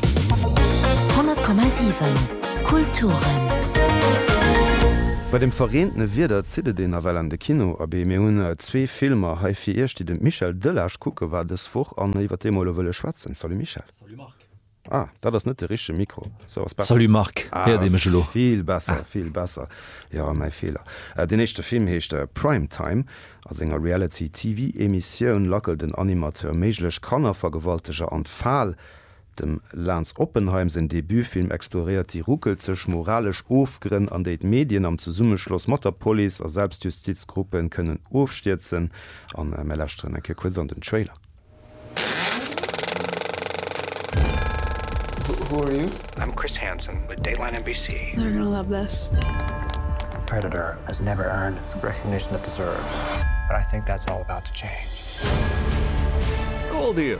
100,7 Kulturen. Bei dem verreentene Wieder zitt et een nawell an de Kino. Abee, mir hunn zwee Filmer hei fir Iech, déi de Michel Delage kucke war dës Woch an iwwer déi mer elo wëlle schwätzen. Salut Michel. Salut Marc. Ah, dat ass net de richtege Mikro. Sou ass besser. Salut Marc. Héiert ee mech elo? Ah, vill besser, vill besser. Jo, mäi Feeler. Deen éischte Film heescht Prime Time. A senger Reality-TV-Emissioun lackelt en Animateur méiglech Kannervergewalteger an d'Fal. Dem Lance Oppenheim säin Debutfilm exploréiert déi ruckelzeg moralesch Ofgrënn, an déi d'Medien am Zesummeschloss mat der Police a Selbstjustizgruppe kënnen ofstierzen. A mir lauschteren eng Kéier kuerz an den Trailer. Who are you? I'm Chris Hansen with Dateline NBC. They're gonna love this. Predator has never earned the recognition it deserves, but I think that's all about to change. Goal deal!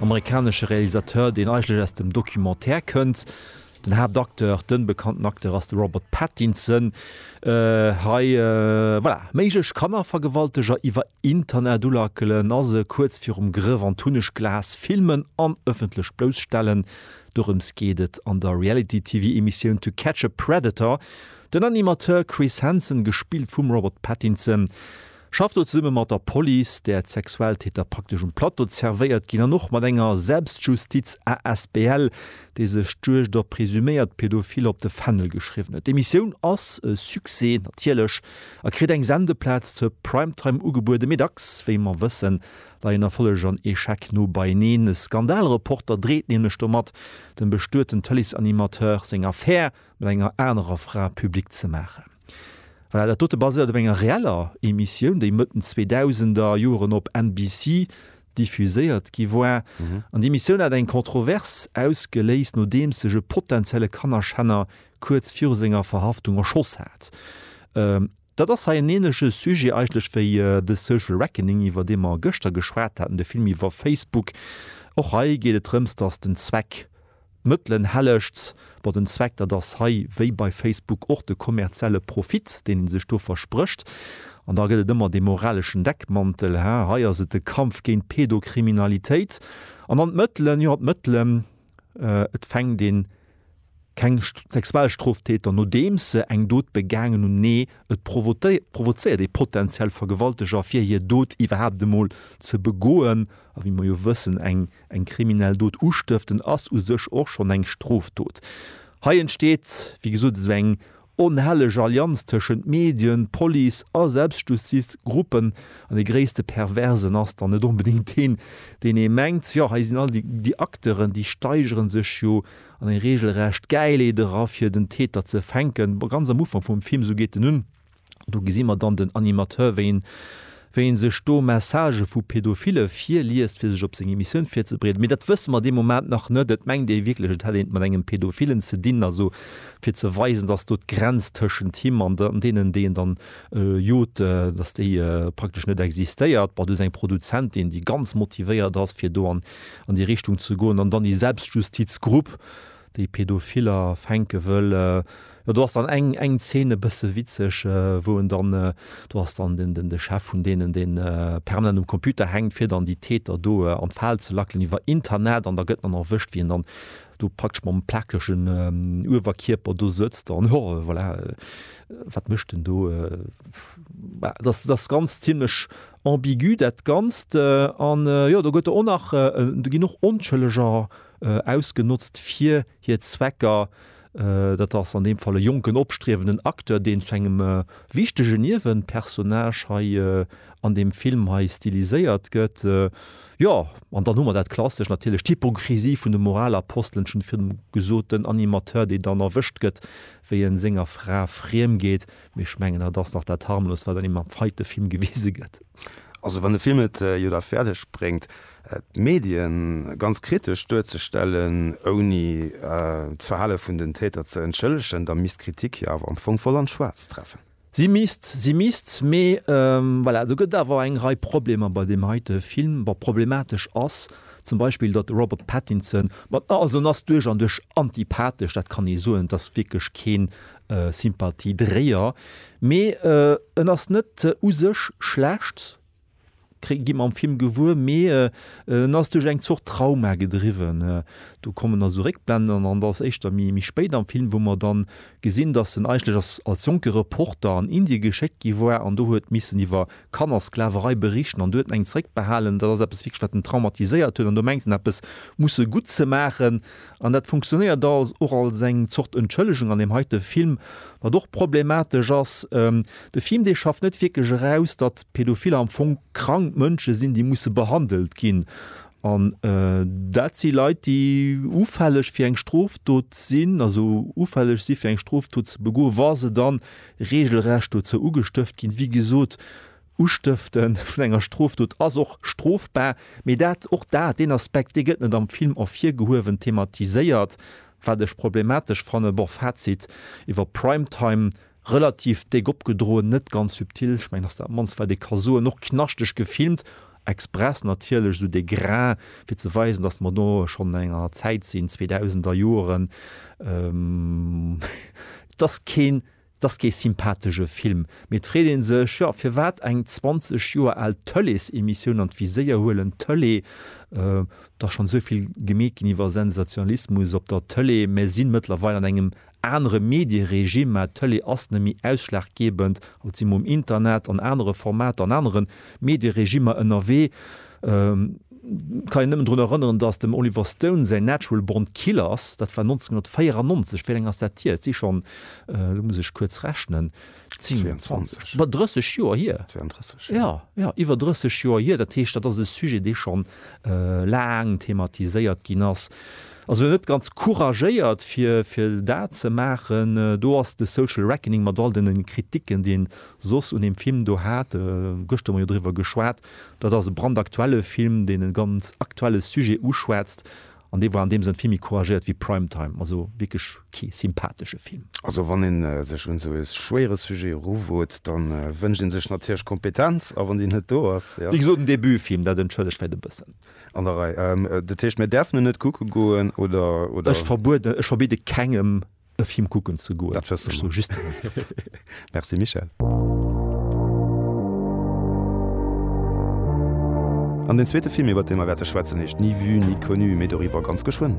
Amerikanesche Realisateur, deen eigentlech aus dem Documentaire kënnt. Den Haaptacteur, den bekannten Acteur ass de Robert Pattinson. Hei, voilà, méiglech Kannervergewalteger iwwer Internet ulackelen a se kuerz virum Grëff an d'Hunnegglas filmen an ëffentlech bloussstellen. Dorëms geet et an der Reality-TV-Emissioun To Catch a Predator. Den Animateur Chris Hansen, gespillt vum Robert Pattinson, Schafft do zesumme mat der Police, där d'Sexualtäter praktesch um Plateau zervéiert ginn, an och mat enger Selbstjustiz asbl, déi sech d'Juegd op presuméiert Pädophil op de Fändel geschriwwen huet. D'Emissioun ass e Succès, natierlech, a kritt eng Sendeplaz zur Primetime ugebueden, mee dacks, wéi mer wëssen, leien Erfolleg an Echec no beieneen. E Skandalreporter dreet nämlech domat dem bestueten Tëleesanimateur seng Affär. mat enger anerer Fra public ze maachen. Voilà, dat dote baséiert op enger reeller Emissioun, déi Mëtten 2000 er Joren op NBC diffuséiert gi war. An déi Emissioun hat eng Kontrovers ausgeléist, nodeems sech e potenzielle Kannerschänner kuerz viru senger Verhaftung erschoss hat. Dat ass hei en ähnleche Sujet eigentlech wéi The Social Reckoning, iwwer dee mer gëschter geschwat haten, de Film iwwer Facebook. Och hei geet et drëms, dass den Zweck d'Mëttelen hellegt. Bon, den Zweck, dat ass hei wéi bei Facebook och de kommerzielle Profit, deen ee sech do versprécht. An da gëtt et ëmmer dee moraleschen Deckmantel, Hä, hei ass et de Kampf géint d'Pedokriminalitéit. An dann d'Mëttelen, jo, d'Mëttelen, Et fänkt een keng Sexualstroftäter, nodeems se eng Dot begaangen hunn. Nee, et provozéiert ee potenziell Vergewalteger, fir hir Dot iwwerhaapt emol ze begoen. A wéi mer jo wëssen, eng kriminell Dot ustëften ass u sech och schonn eng Strofdot. Hei entsteet, wéi gesot, esou eng Onhelleg Allianz tëschent Medien, Police a Selbstjustiz, Gruppen. An dee gréisste Perversen ass dann net onbedéngt deen, deen ee mengt. Jo, hei sinn all déi Acteuren, déi steigere sech jo an eng regelrecht Gäileed era, fir den Täter ze fänken. Ganz am Ufank vum Film, esou geet en un, do gesi mer dann den Animateur, wéi en, wéi ee sech do Messagë vu Pädophille virliest, fir sech op seng Emissioun virzebereeden. Mee dat wësse mer dee Moment nach net. Et mengt ee wierklech, et hätt een et mat engem Pädophillen ze dinn, also fir ze weisen, dass do d'Grenz tëschent him an deenen, déi en dann jot, dass déi praktesch net existéiert. Bon, do ass eng Produzentin, déi ganz motivéiert ass, fir do an déi Richtung ze goen, an dann déi Selbstjustiz-Grupp, déi Pedophiller fänke wëll, jo do ass dann eng eng Zeen e bësse witzeg, wou en dann, do ass dann den den de Chef vun deenen deen permanent um Computer hänkt fir dann déi Täter do an d'Fal ze lackelen iwwer Internet an da gëtt en dann erwëscht wéi en dann do praktesch mam plakegen Uewerkierper do sëtzt an jo voilà wat mécht en do, bah dat ass ganz zimlech ambigu dat Ganzt an jo do gëtt der och nach do ginn och Onschëlleger ausgenotzt fir hir Zwecker. Dat ass an deem Fall e jonken, opstriewenden Acteur, deen zu engem wichtege Niewenpersonnage hei an deem Film hei stiliséiert gëtt. Jo, an dann hu mer dat Klassescht natierlech, d'Hypokrisie vun de Moralapostelen vun dem gesoten Animateur, dee dann erwëscht gëtt, wéi e senger Fra friem geet. Mee ech mengen, dat ass nach dat Harmlost, wat an deem feite Film gewise gëtt. Also wann de Film et jo da fäerdeg bréngt, D'Medien ganz kritesch duerzestellen, ouni d'Verhale vun den Täter ze entschëllegen, da misst d'Kritik hir awer am Fong voll an d'Schwaarzt treffen. Si misst, si misst, mee voilà, do gëtt awer eng Rei Problemer bei deem heite Film. Bon, problematesch ass zum Beispill, datt de Robert Pattinson, bon, also en ass duerch an duerch antipathesch, dat kann ee soen, et ass wierklech keen Sympathiedréier, mee en ass net u sech schlecht, gi mer am Film gewuer, mee en ass duerch eng Zort Trauma gedriwwen. Do kommen also Réckblenden an dat ass éischter méi méi spéit am Film, wou mer dann gesinn, dass en eigentlech als als jonke Reporter an Indien geschéckt gi war an do huet missen iwwer Kannersklaverei berichten an do huet en eng zréckbehalen. Dat ass eppes wierklech wat en traumatiséiert huet an do mengt en eppes musse gutt ze maachen. An dat funktionéiert als och als eng Zort Entschëllegung an deem heite Film, wat och problematesch ass. De Film, dee schafft net wierklech eraus, datt Pädophiller am Fong krank Mënsche sinn, déi musse behandelt ginn. An dat si Leit, déi ufälleg fir eng Strofdot sinn, also ufälleg si fir eng Strofdot ze begoen, wa se da reegelrecht dozou ugestëft ginn. Wéi gesot. Ustëfte vun enger Strofdot ass och strofbar, mee dat, och dat, deen Aspekt, dee gëtt net am Film ervirgehuewen, thematiséiert, wat ech problematesch fannen. Bon, Fazit iwwer Prime Time, relativ déck opgedroen, net ganz subtil, ech mengen, ass dat mannst, wat ee ka soen, och knaschteg gefilmt, express natierlech, esou de Grain, fir ze weisen, dass mer do schonn an enger Zäit sinn, Zweedausender Joren, et ass keen. 't ass kee sympathesche Film, mee et freet ee sech, jo, firwat eng 20 Joer al Tëleesemissioun an d'Viséier huelen, Tëlee, et ass schonn esou vill gemeet ginn iwwer Sensationalismus op der Tëlee, mer si mëttlerweil an engem anere Medieregime, mä d'Tëlee ass nëmmi ausschlaggebend, haut si mer um Internet, an anere Formater, an anere Medieregimer ënnerwee. Kann een nëmmen drun erënneren, datt dem Oliver Stone säin Natural Born Killers, dat war 1994, wéi laang ass dat hier? Et si schonn, elo muss ech kuerz rechnen, 22, bal 30 Joer hier. Jo, jo, iwwer 30 Joer hier. Dat heescht, dat ass e Sujet, dee schonn laang thematiséiert ginn ass. Also net ganz couragéiert, fir dat ze maachen. Do ass de Social Reckoning mat all deene Kriticken, déi een soss un deem Film do hat, gëschter hu mer jo driwwer geschwat, Dat ass e brandaktuelle Film, deen e ganz aktuelle Sujet uschwätzt an dee war an deem Sënn vill méi couragéiert wéi Prime Time. Also wierklech kee sympathesche Film. Also wann ee sech un esou e schwéiere Sujet eruwot, da wënscht ee sech natierlech Kompetenz a wann déi net do ass, jo. Wéi gesot, en Debutfilm, dat entschëllegt vläicht e bëssen. An der Rei. Dat heescht, mir däerfen en net kucke goen, oder? Ech verbuede, ech verbidde kengem e Film kucken ze goen. Dat wësse mer. Ech soe just Merci Michèle. An den zweete Film, iwwert dee mer wäerte schwätzen, heescht Ni vue ni connue, mee doriwwer ganz geschwënn.